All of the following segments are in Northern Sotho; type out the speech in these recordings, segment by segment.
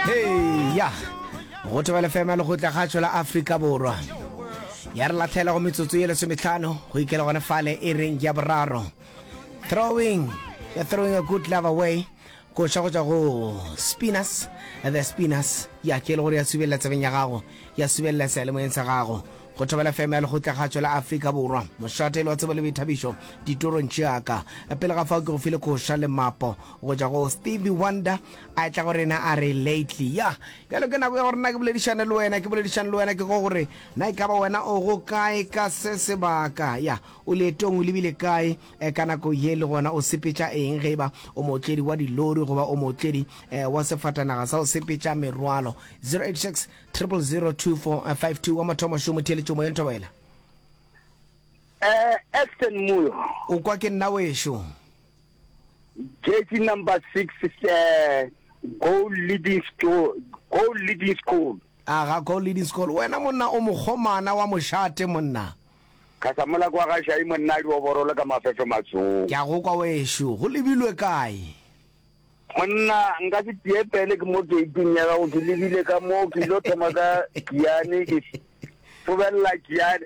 heya go tebele fema le go tla ga tšola afrika borwa ya re latlhela go metsotso ye lesometlhano go ikela gone fale e reng ya boraro throwing ya throwing a good love away koša go tšwa go spinners the spinners ya ke le gore ya subelela tsebeng ya gago ya subelela sealemoyeng sa gago go thobela fm ya lekgotla kgatšo la afrika borwa mošatelo wa tsebo le boithabišo ditorong tšeaka pele ga fao ke go file koša le mapo Go tšwa go Stevie Wonder, a etla go rena a re, Lately. Yah, bjalo ke nako ya gore na ke boledišane le wena. Ke boledišane le wena ke go gore, na e ka ba wena o go kae ka se sebaka? Yah, o leetong, o lebile kae eh, ka nako ye le gona o sepetša eng? Ge e ba o mootledi wa dilori goba o mootledi eh, wa sefatanaga sa go sepetša merwalo. 086 0002452 wa mathomošomo, theeletšo moyeng, thobela. Eh, Ashton Moyo. O kwa ke nna wešo. Jersey number six is a goal leading school, goal leading school. a ga goal leading school wena monna o mokgomana wa mošate monna Khasamolako wa ga Šai monna di oborole ka mafefe matsong. ke a go kwa wešo go lebilwe kae Monna nka se tie pele ke mo gate-ing ya gago ke lebile ka moo ke ile thoma ka Kiane ke fobelela Kiane.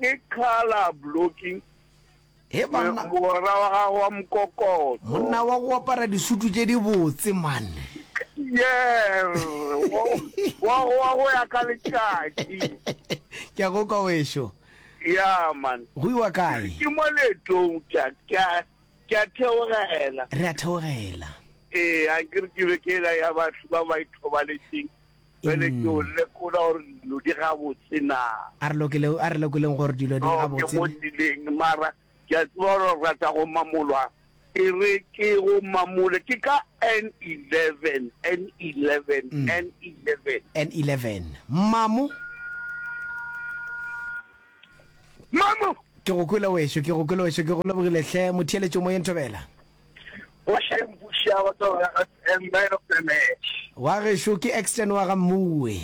Ke colour blocking. He banna. Mogwera wa gago wa mokokotlo. Monna wa go apara disutu tše di botse manne. Yes. Wa go wa go ya ka letšatši. Ke a go kwa wešo. Ya man. Go iwa kae? Ke mo letong tša ka ke a theogela. Re a theogela. Ee, a ke re ke be ke la ya batho ba ba ithobaletseng. Bjale ke o lekola gore dilo di gabotse na. A re lokile, a re lekoleng gore dilo di gabotse. Ke mo tseleng mara ke a tseba gore o rata go mamolwa. E re ke go mamole ke ka N11, N11, N11. N11. Mmamo? Mmamo! Ke go kwele wešo, ke go kwele wešo, ke go lebogile hle, motheeletšo moyeng Thobela. Boše mbuši a go tsoga ga Sam man of the match. Wa gešo ke Extian wa ga Mmuwe.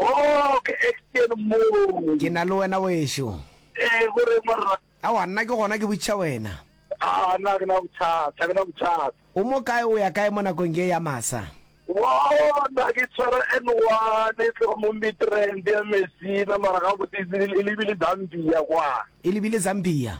Oh ke Extian Mmuwe. Ke na le wena wešo. Ee go reng morra. Aowa nna ke gona ke botšiša wena. Aa nna ga ke na bothata, ga ke na bothata. O mo kae o ya kae mo nakong ye ya masa? Woo nna ke tshwara N one e tloga mo Midrand ya Messina mara gabotse e lebile Zambia kwa. E lebile Zambia.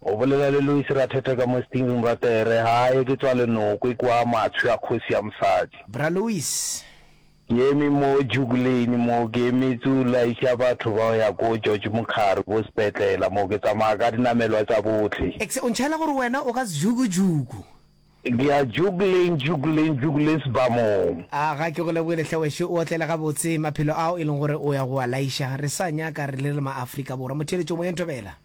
O bolela le Lois Rathete ka mo stingring ra tere, Haye, ke tswa Lenokwe kua Matshwi a kgosi ya mosadi. Bra Lois. Ke eme mo Duke Lane mo, ke emetse o laiša batho ba go ya ko George Mokhari ko sepetlela mo, ke tsamaya ka dinamelwa tsa bohle. Exe, o ntšhaela gore wena o ka Zhukujuku. Ke ya Duke Lane, Duke Lane, Duke Lane sebamong. A ga ke go lebogele hle wešo, o otlele gabotse, maphelo ao e leng gore o ya go a laiša, re sa nyaka re le re ma-Afrika Borwa. Motheeletšomoyeng, thobela.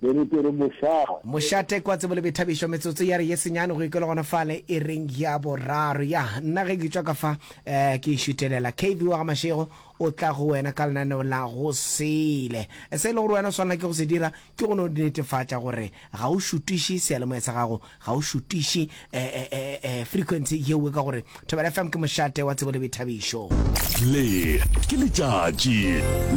Ke re, ke re mošaa. Mošaa Tekwa Tsebo le Boithabišo Metsotso ya re ye senyane go ikelo gona fale ireng ya boraro. Ya, nna ge ke tšwa ka fa eh, ke šutelela. KV wa ga Mashego o tla go wena ka lenaneo la gosele. Se e le gore wena o swanela ke go se dira ke go no netefatša gore ga o šutiše seyalemoya sa gago ga o šutiše eh, eh, eh, eh, eh, frequency yewe ka gore thobela fm ke mošate wa tsebo le boithabišo le ke letšatši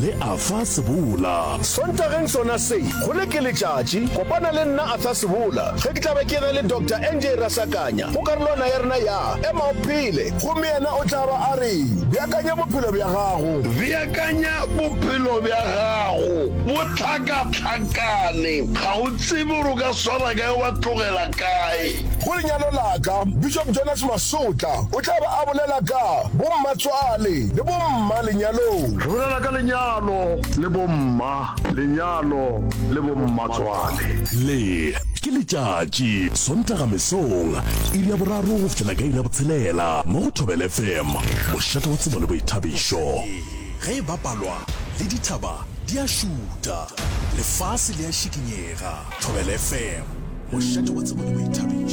le a fa sebola sontageng sona se go le ke letšatši kopana le nna arthur sebola ge ke tlabe ke ge le dr nj rasakanya go karolwana ya rena ya ema o phele gomme yena o tla ba a re beakanya bophelo bja gago beakanya bophelo bja gago bo tlhakatlhakane ga o tsebe gore o ka swara kae, wa tlogela kae. Go lenyalo la ka, Bishop Jonas Masotla o tla be a bolela ka Bommatswale le Bomma Lenyalong. Re bolela ka lenyalo le bomma lenyalo le bommatswale. Le ke letšatši, Sontaga mesong, iri ya boraro go fihlela ka iri ya botshelela mo go Thobela FM, mošate wa tsebo le boithabišo. Ee, ge e bapalwa le dithaba di a šuta. Lefase le a šikinyega. Thobela FM, mošate wa tsebo le boithabišo.